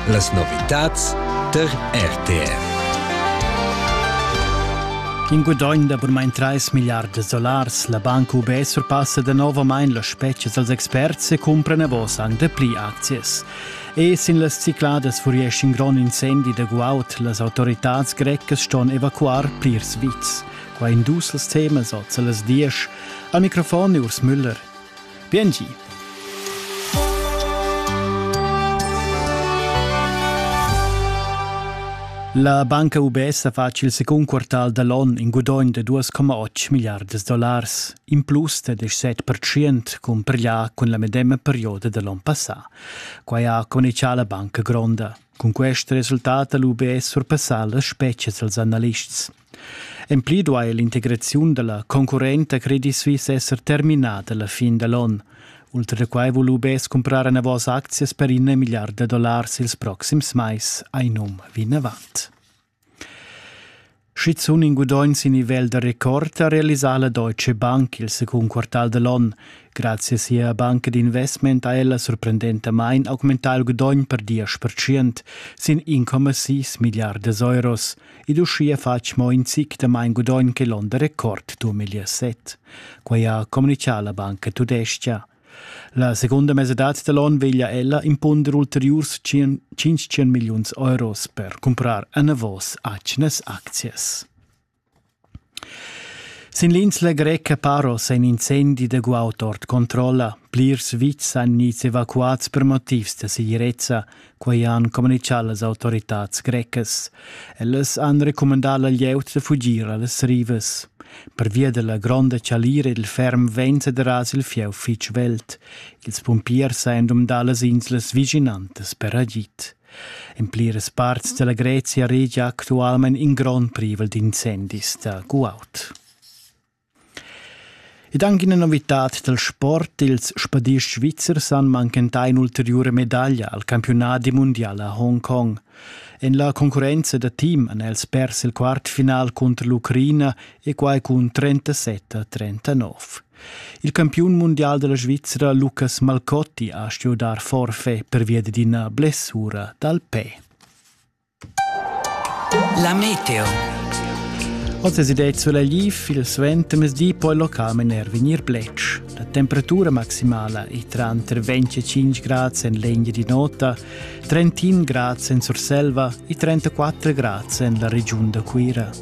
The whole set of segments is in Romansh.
Las novitads tar RTF. In gudogn da burmain 3 milliards da solars, la Banca UB surpassa danovamain las spezias als experts e cumpra davos anc dapli aczias. E sin las cicladas furiesch in grond incendi da guaud. Las autoritads grecas ston evacuar plirs vits. Qua in dus temas oz a las 10. Al microfon Urs Müller. Biengi. La banca UBS ha fatg il secund quartal da l'on in gudogn da 2,8 milliardas dollars, in plus da 17% compareglià cun la medema perioda da l'on passà. Quai ha conichà la banca gronda. Cun quest resultat ha l'UBS surpassà las spetgas dals analists. En pli duai l'integraziun da la concurrenta Credit Suisse esser terminada la fin da l'onn. Ultra da quai vul UBS cumprar enavos aczias per in milliard da dollars ils proxims mais, ein um vinavant. Schizuun in gudogn sin nivel da rekord ha realisà la Deutsche Bank il secund quartal da l'onn. Grazie a sia banca d'investment ha ella sorprendentamain augmentà il gudogn per 10%, sin 1,6 milliardas euros. ed uschia fatg mo in zic da main gudogn che l'onn da record 2007. Quai ha communitgà la banca tudestga. La segunda mesadad da l'onn veglia ella impunder ulteriurs 500 milliuns euros per cumprar enavos atgnas aczias. Sin l'insla greca Paros è in incendi da guaud ord controlla. Plirs vitgs han gnits evacuats per motivs da segirezza, quai han communitgà las autoritads grecas. Ellas han recumandà la glieud da fugir a las rivas. Pervia dalla gronda chalira ed il ferm vent sederas il fieu fitg veld. Ils pumpiers han dumdà las inslas vischinantas per agid. In pliras parts dalla Grezia regia actualmein in grond privel d'incendis da guaud. Ed anche una novità del sport, ils spadists svizzers han manchentà un'ulteriore medaglia al campionat mondial a Hongkong. En la concorrenza da team han els pers il quartfinal contro l'Ucraina e quai cun 37 a 39. Il campiun mundial dalla Svizra Lucas Malcotti ha stuiu dar forfait pervia dad ina blessura dal pe. La meteo. Oz es idea sulla liv il suentermesdi poi local mener vegnir blec. La temperatura maximala è tra 25 grad en legna di nota, 31 grad en Surselva e 34 grad en la regiun da Cuira.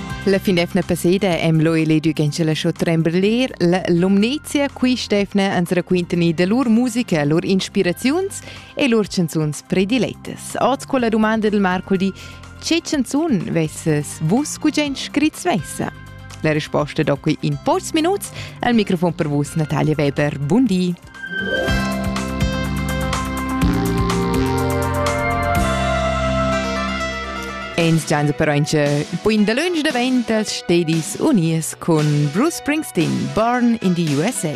La finefna passeda em lo eledu gencha la show trembler, la Lumnezia, qui Stefna ans raquintani da lur musica, lur inspiraziuns e lur chanzuns prediletas. Oz con la domanda del Marco di «Che chanzun vesses vus gugent scrit svessa?» La risposta da qui in pocs minuts al microfon per vus Natalia Weber. Buon di! Ins gianza però ince il point da lunsch daventas stedis unies cun Bruce Springsteen, Born in the USA.